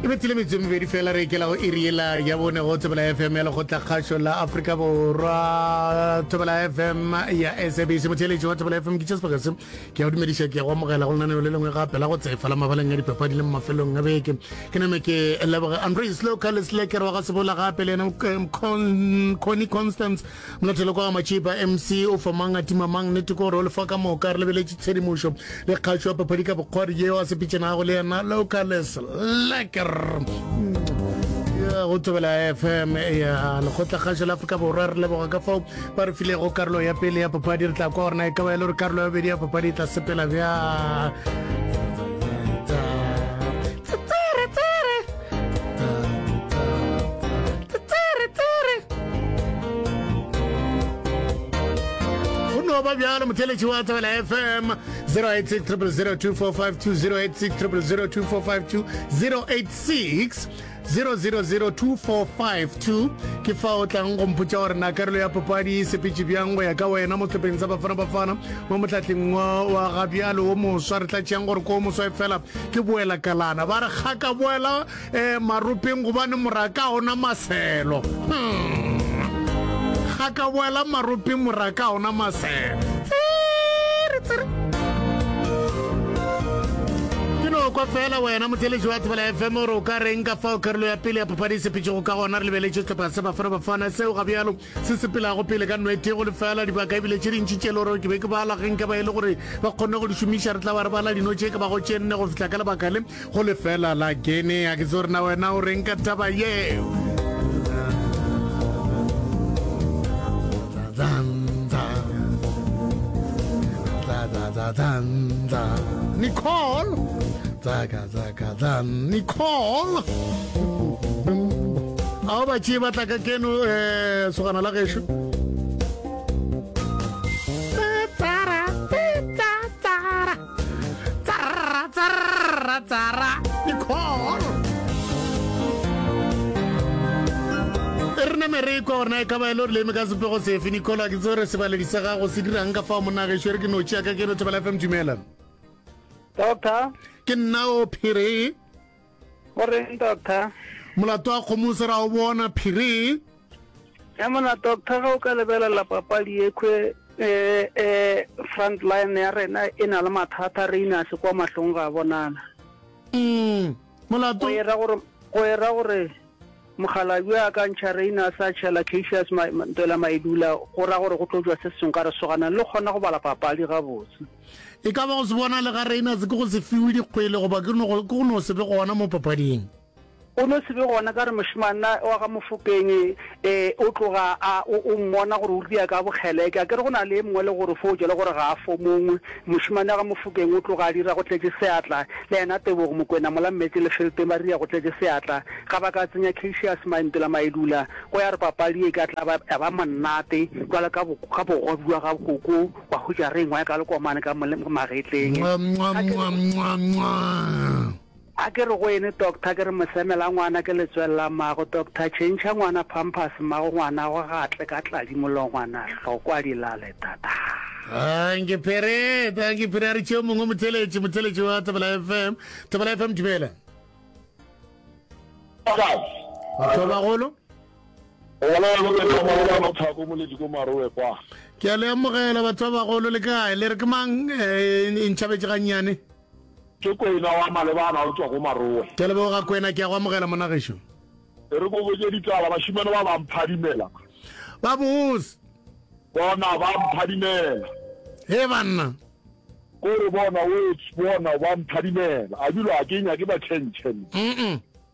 e be tsele metse mebedi fela re ikela go iri ela ya bone go thobela fm ya lekgotla kgašo la aforika borwa thobela fm ya sabc motheeletši wa thobela fm ke chesbogese ke ya go dumediša ke ya go amogela go lenaneo le lengwe gape la go tsefa la mabaleng ya dipapadi le mafelong a beke ke name ke leboge andres locales lekere wa ga sebola gape le yena mconi constance Molathelo kwa Matšipa MC o fa mang a tima mang nete ko gore o lefa ka moka re lebeletše tshedimošo le kgašo ya paphadi ka bokgwari yeo a sepetšenago le yena locales leker go tsebela fm ya lekgotlakgašo la afrika borwa re leboga ka fao ba re filego karolo ya pele ya paphadi re tla kwa gorena e ka ba e le gore karolo ya bobedi ya paphadi e tla sepela bjang ba bjalo motheletši wa thobela fm 0860002452 ke fa o tlang go mpotsa gore na karolo ya papadi e sepetse bjang go ya ka wena mo tlhopheng sa bafana bafana mo motlhatleng wa gabjalo o moswa re tlatšeang gore ko moswa e fela Ke boela kalana ba re ga ka boela eh, maropeng gobane moraka ona maselo hmm. ga ka boela maropeng moraka ona maselo kwa fela wena motheletši wa thebela fm ore o ka reng ka fao karolo ya pele ya phapadisepetšego ka gona re lebeletse tlhopha se bafana bafana seo ga bjalo se sepelago pele ka nwete go lefela dibaka ebile tše dintši tše le gore ke be ke bala ge nke ba e le gore ba kgonne go di šomiša re tla ba re bala dino tše ka bago tše nne go fihla ka lebaka le go lefela la genea ke tse gore na wena o reng ka taba yeo Nicole Zaka dan Nicole Ao ba tšee ba tla ka keno eh, sogana la gešo Tsara, pita, tsara Tsara, tsara, tsara Nicole e re name re kwa gorena e ka ba e le gore leme ka sepego sefe nicole a ke tse gore sebaledi sa gago se dirang ka fao monagešo e re ke notšeaka ke no thobela fm dumela doctor ke nna o phiri o reng doctor molato wa kgomo se ra o bona phiri ya mona doctor ga o ka lebelela papadi ekwe eh, eh, front line ya rena e na le mathata re ina se kwa mahlong ga bonana mm, molato go era gore Mokgalabje a ka ntšha Reina a sa tšhela Cassius ma, ma, ntwela maedula, go ra gore go tlo jwa se sengwe ka re soganang le kgona go bala papadi gabotse. E ka ba go se bona le ga Reina se ke go se fiwe dikgwele goba ke go ke go no se be gona mo papading. O no se be gona ka re mošemana wa ga Mofokeng e, e, o tloga a o, o mmona gore o ria ka bokgeleke. A ke re go na le e mongwe le gore fo o jela gore ga a fo mongwe. Mošemane wa ga Mofokeng o tloga a dira go tletše seatla, le yena Tebogo Mokwena mola Mmetse le Felteng ba dira go tletše seatla. Ga ba ka tsenya Cacious Maimpi la Mailula, go ya re papadi ye e ka tla ba ya ba monate bjalo ka bo, ka bogobe bja ga Koko wa hutša re engwa ya ka lekomane ka mo, magetleng. Mwah, mwah, mwah, mwah, mwah. A ke re go ene, Doctor, ke re mosemela ngwana ke letswele la mmago, Doctor, tšhentšha ngwana pampers, mmago ngwanagwe ga a tle ka tladi mollo ngwana hlo kwa di lale tataa. Thank you Phiri, thank you Phiri, a re tšeo mongwe motheletši, motheletši wa Thobela FM, Thobela FM dumela. Batho ba bagolo. Ke a le amogela batho ba bagolo le kae le re ke mang eh, e ntšhabetše gannyane. Ke Kwena wa Malebana o tšwa go Marowe. Ke a leboga Kwena, ke a go amogela monna gešo. E re ke go botše ditaba, bašimane ba ba mphadimela. Ba bose. Bona ba mphadimela. Hee banna. Ko re bona, wets, bona ba mphadimela. A bilo a ke nyake ba tšhentšhe nna. Umm.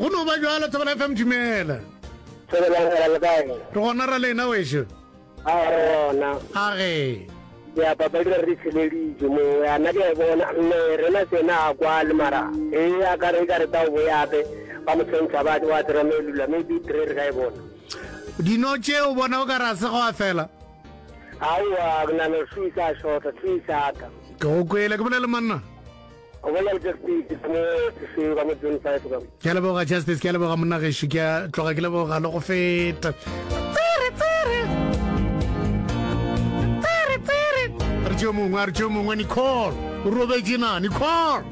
go no ba jalo thobela fm dumela re gona ra lena wešo a re gona a ge diapapa di re tsheleditse mongwe a na ke bona mme rena sena a kwale mara e a ka re ka re tsa o boyape ba mo tshwentsha ba wa tsera me lula me di tre re ka e bona Dino tše o bona o ka re a se go a fela? Aowa, ke nagana gore se isa a šota, se isa ata. Ke go kwele, ke bolele monna. O bolela le Justice ka mo ofising ka mo June 5 ka. Ke a leboga Justice, ke a leboga monna gešo, ke a tloga ke leboga le go feta. Tsere, tsere. Tsere, tsere. Re tšeo mongwe, re tšeo mongwe Nicole. O robetše na Nicole?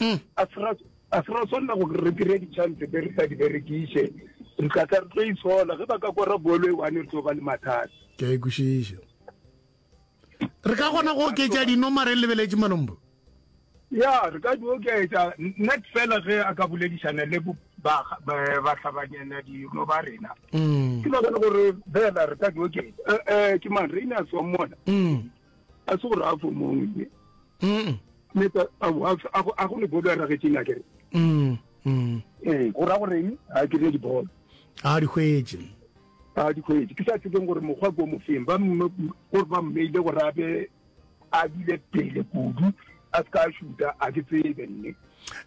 hmm. a se ra tshwanela go re kry-e di-chance tse re sa di berekiše re tla tla re tlo itshola ge ba ka kora bolo e one re tlo ba le mathata ke a ikwešiša re ka kgona go oketša dinoma re lebeletse malombo ya re ka di oketša net fela ge a ka boledišana le bahlabanyana dino ba rena mm. ke nagana gore fela re ka di oketša um ke mang reine a tswang mona mm. a se go raya fo mongwe meta a go le bolo a ragetšeng a kere ee go raya goreng ga a kry-e dibolo a di hwetse a di hwetse ke sa tsebeng gore mokgwa ko mofeng ba gore ba mmeile gore abe a bile pele kudu a se ka a šuta a ke tsebe nne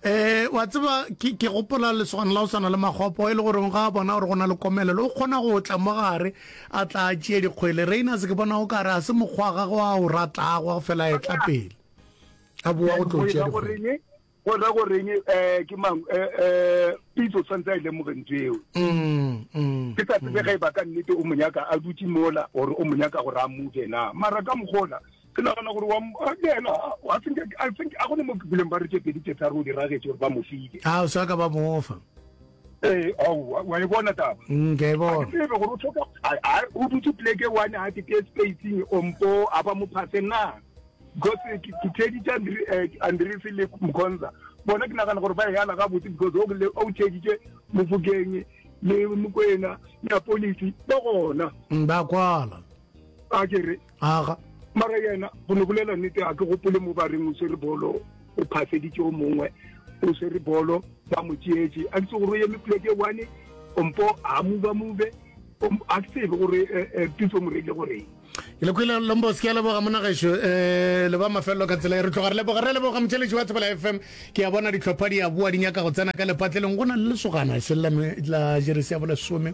eh wa tseba ke ke gopola lesogana la o sana le magopo e le gore ga bona gore gona le komelelo o kgona go tla mo gare a tla a tšee dikgwele reina se ke bona o ka re a se mokgwa ga go a o ratlago go fela e tla pele a boa go tlo tšea dikgwele go ra go reng eh ke mang eh eh pitso tsantsa ile e mo rentseo mm, mm ke tsa tsebe mm. ga e ba ka nnete o monyaka a dutse mola or o monyaka go ra mo kena mara ka mogola ke nagana gore wa yena i think i think a gone mo ke buleng ba re tše pedi tše tharo o diragetse gore ba mo file a o sa ka ba mofa ee aowa wa e bona taba mm, ke e bona tsebe gore o tlhoka o dutse pleke one a tete spacing ompo a ba mo phase na because ke tedi tša eh, andrese le mkhonza bona ke nagana gore ba e yana ga botse because o tšeditše mofokeng le mokwena ya polisi ba gona mm, ba kwala a kere aga mara yena go no bolela nnete a ke gopole mo ba reng o swere bolo o phaseditse o mongwe o swere bolo ba mo tšeetse a ntse gore o eme pleke one ompo a move move a ke tsebe gore eh, eh, pitso mo reile goreng ke le kwele lombos ke a leboga monagešo um eh, le ba mafelelo ka tsela e re tloga re leboga re leboga motšheletši wa thobela f m ke a bona ditlhopha di a boa di nyaka go tsena ka lepatleleng go na le lesogana se la jeresi ya bolesome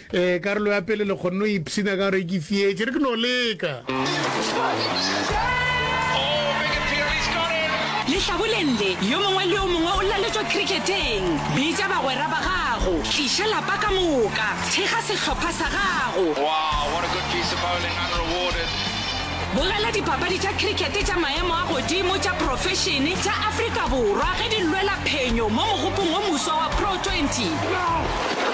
Ee, karolo ya pele le kgonne o ipshina ka gore ke fietše re ke no leka. Lehlaboleng le, yo mongwe le yo mongwe o laletšwa kriketeng. Bitša bagwera ba gago. Tliša lapa ka moka. Thekga sehlopha sa gago. Wow, what a good piece of bowling, unrewarded. Bogela dipapadi tša cricket tša maemo a godimo tša profešene tša Afrika Borwa ge di lwela phenyo mo mogopong o moswa wa Pro 20.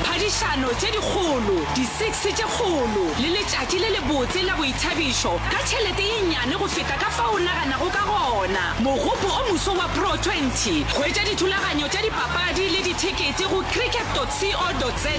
Phadišano tše dikgolo, di-six tše kgolo le letšatši le lebotse la boithabišo ka tšhelete ye nnyane go feta ka fao o naganago ka gona. Mogopo o moswa wa Pro 20. Hwetša dithulaganyo tša dipapadi le dithekete go cricket.co.za.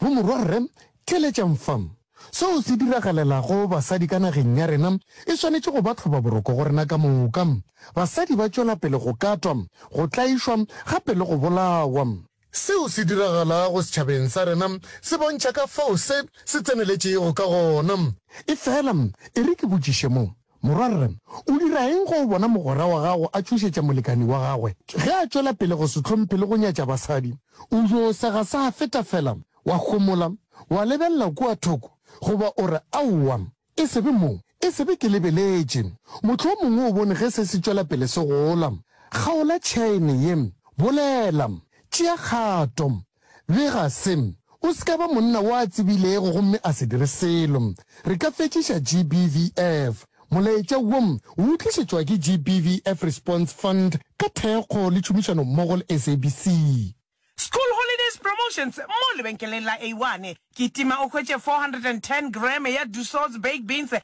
Mo morwa rre, theeletšang fa. Seo se diragalelago basadi ka nageng ya rena e swanetše go ba tlhobaboroko go rena ka moka. Basadi ba tšwela pele go katwa, go tlaišwa, gape le go bolawa. Seo se diragalago setšhabeng sa rena se bontšha ka fao se se tseneletšego ka gona. Efela e re ke botšiše mo. Morwa Rre, o dira eng ge o bona mogwera wa gago a tšhošetša molekani wa gagwe ge a tšwela pele go se hlomphe le go nyatša basadi? O yo sega sa feta fela, wa homola, wa lebelela kua thoko, goba o re, Aowa, e se be mo, e se be ke lebeletše. Mohlomongwe o bone ge se se tšwela pele se gola. Kgaola tšhaene ye. Bolela. Tšea kgato. Bega se. O se ka ba monna wo a tsebilego gomme a se dire selo. Re ka fetšiša GBVF. Molaetša wo o utlišetšwa ke GBVF Response Fund ka thekgo le tšhomišano mmogo le SABC. School Holidays Promotions mo lebenkeleng la A-One. Kitima o hwetše 410 grame ya Dussault's Baked Beans